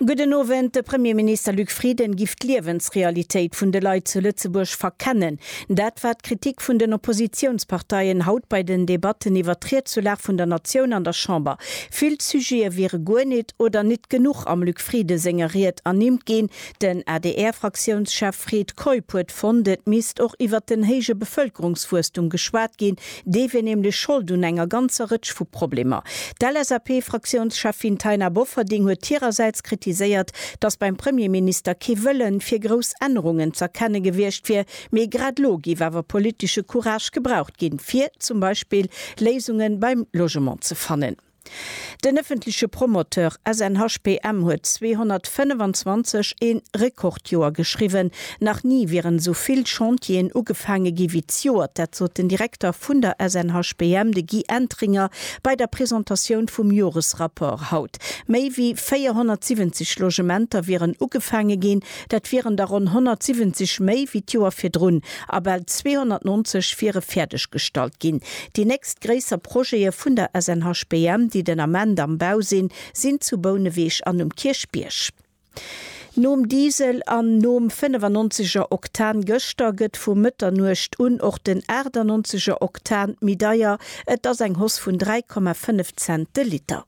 Gudden Owend, De Premierminister Luc Frieden giff d'Liewensrealitéit vun de Leit zu Lëtzebuerg verkennen. Dat war d'Kritik vun den Oppositiounsparteien haut bei den Debatten iwwer d'Riedsulag vun der Natioun an der Chamber. Vill Sujete wiere guer nit oder nit genuch am Luc Frieden senger Ried ernimmt ginn. Den ADR-Fraktiounschef Fred Keup huet fonnt, et misst och iwwer den héije Bevëlkerungswuesstum geschwat ginn, Dee wier nämlech Schold un enger ganzer Rëtsch vu Problemer. D'LSAP-Fraktiounscheffin Taina Bofferding huet hirersäits kritiséiert, datt beim Premierminister kee Wëllen fir grouss Ännerungen z'erkenne gewiescht wier, mee grad elo géif awer politesche Courage gebraucht ginn, fir zum Beispill Léisunge beim Logement ze fannen. Den ëffentleche Promoteur SNHPM huet 225 ee Rekordjoer geschriwwen. Nach ni wieren esou vill Chantieren ugefaange gi wéi d'Joert. Dat sot den Direkter vun der SNHPM, de Guy Entringer, bei der Presentatioun vum Joresrapport haut. Méi wéi 470 Logementer wieren ugefaange ginn. Dat wieren der ronn 170 méi wéi d'Joer virdrun a bal 290 wiere fäerdeg gestallt ginn. Déi nächst gréisser Projete vun der SNHBM, déi den Ament am Bau sinn, sinn zu Bouneweg an um Kierchbierg. Nom Diesel an nom 95 er Oktan gëschter gëtt vu Mëtternuecht un och den 98 er Oktan méi deier, et ass eng Hoss vun 3,5 Cent de Liter.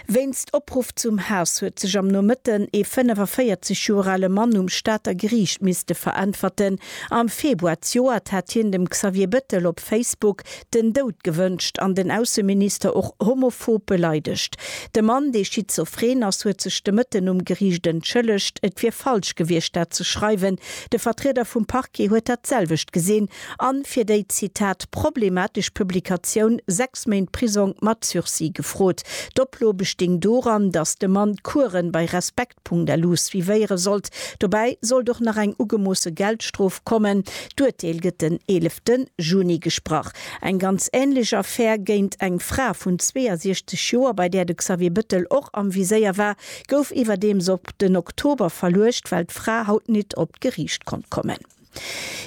Wéinst Opruff zum Haass huet sech am Nomëtten ee 45 Joer ale Mann um Stater Geriicht misste veräntwerten. Am Februar zejoert hat hien dem Xavier Bettel op Facebook den Doud gewënscht an den Ausseminister och homophob beleidegt. De Mann, dee schizophren ass, huet sech de Mëtten um Geriicht entschëllegt. Et wier falsch gewiescht, dat ze schreiwen. De Vertrieder vum Parquet huet dat selwecht gesinn an fir déi, Zitat, problematesch Publikatioun sechs Méint Prisong mat Sursis gefrot. D'Oplo besting doran, datt de Mann d'Kueren bei respekt.lu suivéiere sollt. Dobäi sollt och nach eng ugemoosse Geldstrof kommen. D'Urteel gëtt den 11 Juni gesprach. Eng ganz änlech Affär géint eng Fra vun 62 Joer, bei där de Xavier Bëttel och am Viséier war, gouf iwwerdeems op den Oktober verluecht, well d'Fra haut nit op d'Geriicht konnt kommen.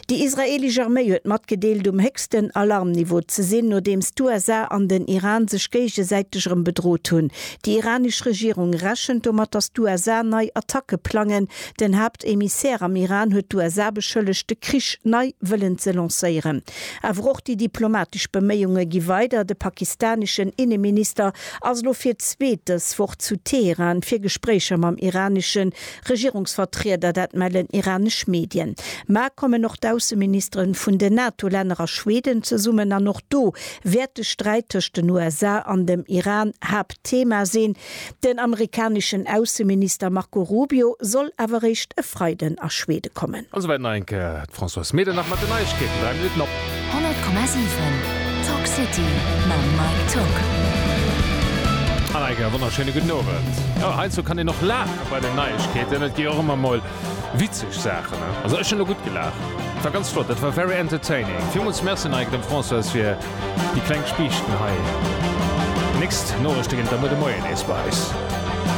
Déi israeelesch Arméi huet matgedeelt, um héchsten Alarmniveau ze sinn, nodeems d'USA an den Iran sech géigesäiteg erëm bedrot hunn. Déi iranesch Regierung rechent domat, datt d'USA nei Attacke plangen. Den Haaptemissär am Iran huet d'USA beschëllegt, de Krich nei wëllen ze lancéieren. Awer och déi diplomatesch Beméiunge gi weider. De pakistaneschen Inneminister ass elo fir d'zweet dës Woch zu Teheran, fir Gespréicher mam iraneschen Regierungsvertrieder, dat mellen iranesch Medien. Ma kommen och d'Ausseministere vun den NATO-Länner a Schweden zesummen an och do wäert de Sträit tëscht den USA an dem Iran Haaptthema sinn. Den amerikaneschen Ausseminister Marco Rubio soll awer eréischt e Freiden a Schwede kommen. An souwäit nach eng Kéier D'Françoise Medernach mat den Neiegkeeten, 3 Minutten op. 100,7 Talk City mam Mike Tock. An eige wonnerschéine gudden Owend. Jo, heiansdo kann een och laache bei den Neiegkeeten. Et gi och ëmmer emol witzeg Saachen, ne? Also ech hunn elo gutt gelaacht. Et war ganz flott, dat war very entertaining. Villmools Merci an eige dem Françoise fir déi kleng Spiichten hei. Nächst Norechte ginn et da muer de Moien nees bei eis.